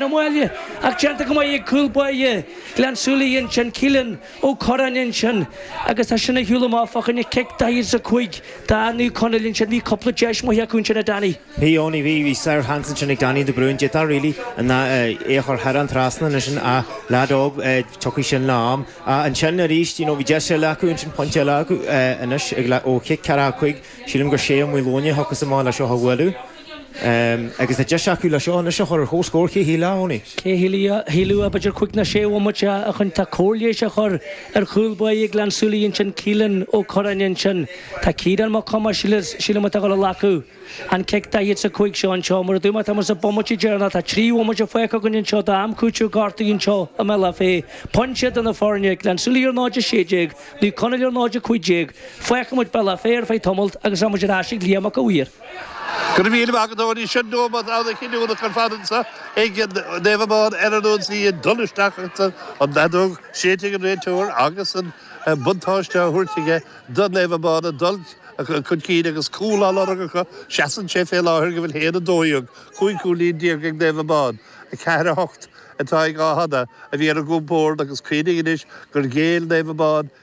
na Maoile, ach déanta go maith ag cúl báire Ghleann tSúilí ansin, Keelan Ó Corráin ansin, agus é sin a shiúl amach fá choinne cic 45 d'fhear Naomh Conaill ansin. Bhí cúpla deis maith acu ansin, a Danny. Bhí Eoin, bhí, bhí sár sheans ansin ag Danny de Brún, d'fhéadfá really ná é a chur thar an trasnán anois sin ach leaid óg, tiocfaidh sin le am. Ach ansin aríst, you know bhí deis eile acu ansin, pointe eile acu anois ó chic 45, sílim gur Shay Ó Maoileoin a thiocfas amach leis seo a bhualadh. Agus tá deis acu le seo anois a chur ar chomhscór Cé a shílfeadh a Danny. Cé a shílfeadh b'fhéidir cúig ná sé bhomaite ó shin tá cóir leighis á chur ar chúl báire Ghleann tSúilí ansin Keelan Ó Corráin ansin tá Ciarán Mac Thomáis sílim atá ag goil a ghlacadh an cic 45 seo anseo mar a dúirt mé tá muid sa bomaite deireanach tá trí bhomaite faighte againn anseo d'am cúitimh gortaithe anseo i mBealach Féich pointe idir na foirne Gleann tSúilí ar 0-16 Naomh Conaill ar 0-15 fágfaidh muid Bealach Féich ar feadh tamalt agus tá muid ar ais ag Liam Mac a' Mhaoir. Go raibh míle maith agat, Owenie. Sin neomat ana chinniúnach ar fad anso ag Naomh Abán ar an ionsaí ag dul isteach ach tá an fheadóg séidte ag an réiteoir agus an buntáiste á thabhairt aige do Naomh Abán ag dul chun cinn agus cúl á lorg acu. Seasann sé fé láthair go bhfuil haon a dó dhéag, cúig chúilín déag ag Naomh Abán. A ceathair a hocht atá ag Athán a bhí ar a gcompord agus cuimhnigh anois gur ghéill Naomh Abán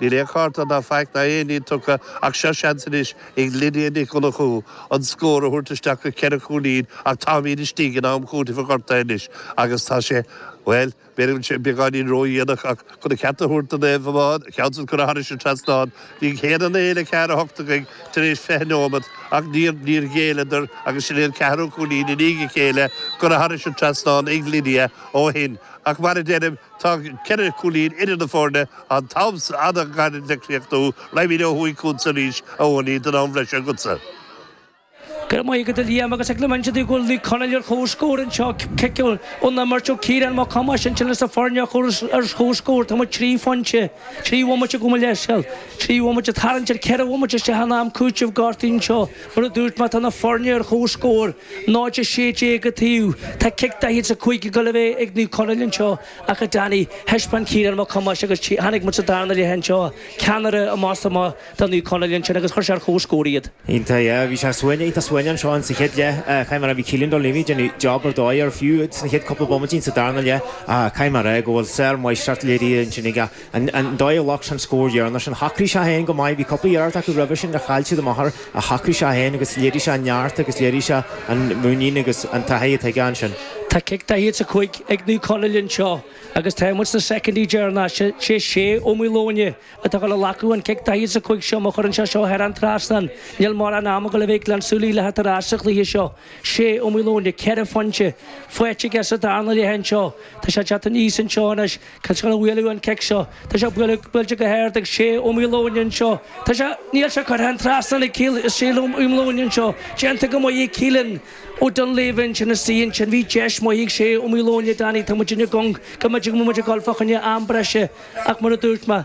Níl aon chárta ná faic ná aon ní tugtha ach seo seans anois ag Lydia Nic Dhonnchú an scór a thabhairt isteach go ceithre chúilín ach táimid istigh in am cúitimh an ghortaithe anois agus tá sé, bhuel, b'fhéidir go bhfuil sé beagáinín ródhéanach ach chun an ceart a thabhairt do Naomh Abán, ceann san curtha thairis an trasnán, bhí an chéad fhonn a fhéile ceathair a hocht againn tar éis fiche neomat ach níor, níor ghéilleadar agus sin é an ceathrú cúilín i ndiaidh a chéile curtha thairis an trasnán ag Lydia ó shin ach mar a deirim, Tá ceithre chúilín idir na foirne an t-am is fhada a caitheadh le críochnú, raghaimid ó thuaidh chughatsa arís, Owenie, don am breise agatsa. Go raibh maith agat, a Liam, agus ag na Muimhnigh de Ghuail Naomh Conaill ar chomhscór anseo, cic ón imirt ó Ciarán Mac Thomáis, ansin leis na foirne a chur ar chomhscór. Tá muid trí phointe, trí bhomaite gabh mo leithscéal, trí bhomaite tarraingt ar cheithre bhomaite isteach in am cúitimh gortaithe anseo. Mar a dúirt mé, tá na foirne ar chomhscór, 0-16 an taobh. Tá cic 45 ag goil a bheith ag Naomh Conaill anseo ach, a Danny, thaispeáin Ciarán Mac Thomáis agus chonaic muid sa darna leath anseo, ceannaire amach is amach do Naomh Conaill ansin agus chuir sé ar chomhscór iad. Iontach, yeah. Bhí sé suaite, iontach suaite anseo sa chéad leath. Caithfidh mé a rá, bhí Kealan Dunleavy ag déanamh job ar dóigh air fiú sna chéad cúpla bomaití sa darna leath. Caithfidh mé a rá go bhfuil sármháistreacht léirithe ansin ag An dóigh ar ghlac sé an scór dheireanach sin, shocraigh sé é féin go maith. Bhí cúpla iarracht acu roimhe sin ar chaill siad amach air ach shocraigh sé é féin agus léirigh sé an neart agus léirigh sé an mhuinín agus an taithí atá aige ansin. Tá cic 45 ag Naomh Conaill anseo agus tá muid sna soicindí deireanacha. Is é Shay Ó Maoileoin atá ag glacadh an chic 45 seo. Má chuireann sé seo thar an trasnán, níl mórán ama acu le bheith ag Gleann Súilí le theacht ar ais sa chluiche seo. Shay Ó Maoileoin, ceithre phointe faighte aige sa darna leath anseo. Tá sé ag teacht aníos anseo anois. Cá bhfuil sé ag bualadh an cic seo? Tá sé buailte go hard ag Shay Ó Maoileoin anseo. Tá sé, níl sé curtha thar an trasnán aige Shay Ó Maoileoin anseo. Déanta go maith ag Keelan Ó Dunleavy ansin istigh ansin. Bhí deis maith ag Shay Ó Maoileoin, Danny, tá muid iontach cóngarach go mbeidh muid ag dul fá choinne am breise ach mar a dúirt mé,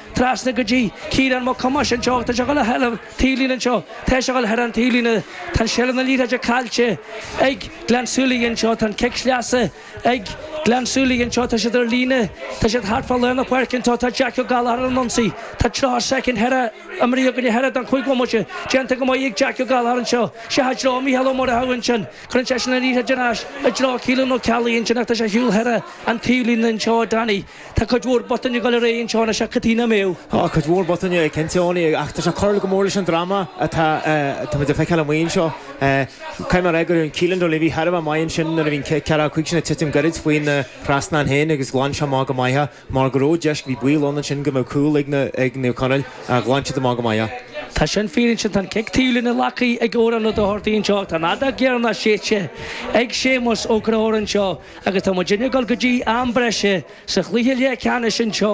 Trasna go dtí Ciarán Mac Tomáis anseo agus tá sé ag dul thar an taobhlíne anseo. Tá sé ag dul thar an taobhlíne. Tá an seilbh na liathróide caillte ag Gleann Súilí anseo. Tá an cic sleasa ag Gleann Súilí anseo. Tá siad ar líne. Tá siad thart fá lár na páirce anseo. Tá Jackie O'Gallagher ar an ionsaí. Tá 30 soicind imeartha againn thar an chúig bhomaite. Déanta go maith ag Jackie O'Gallagher anseo. Seo i dtreo Mhícheál Ó Muireadhaigh ansin. Cuireann seisean an liathróid ar ais i dtreo Keelan Ó Ceallaigh ansin ach tá sé ar shiúl thar an taobhlíne anseo, Danny. Tá cuid mhór botúin ag dul ar aghaidh anseo anois, a Chaitríona, sea. Tá cuid mhór botúin ansin cinnte ach tá sé ag cur go mór leis an dráma atá muid ag feiceáil amuigh anseo. Caithfidh mé a rá go ndearn Keelan Dunleavy thar a bheith maith ansin nuair a bhí an ceathracha cúig sin ag titim gairid faoina thrasnán féin agus ghlan sé amach go maith é mar go raibh deis, bhí baol ann ansin go mbeadh cúl ag Naomh Conaill ach ghlan siad amach go maith é. Tá sin fíor ansin, tá an cic taobhlíne le glacadh ag Odhrán Ó Dochartaí anseo ach tá an fheadóg dheireanach séidte ag Séamus, Ó Criomhthain, anseo. Agus tá muidinne ag dul go dtí am breise sa chluiche leathcheannais anseo.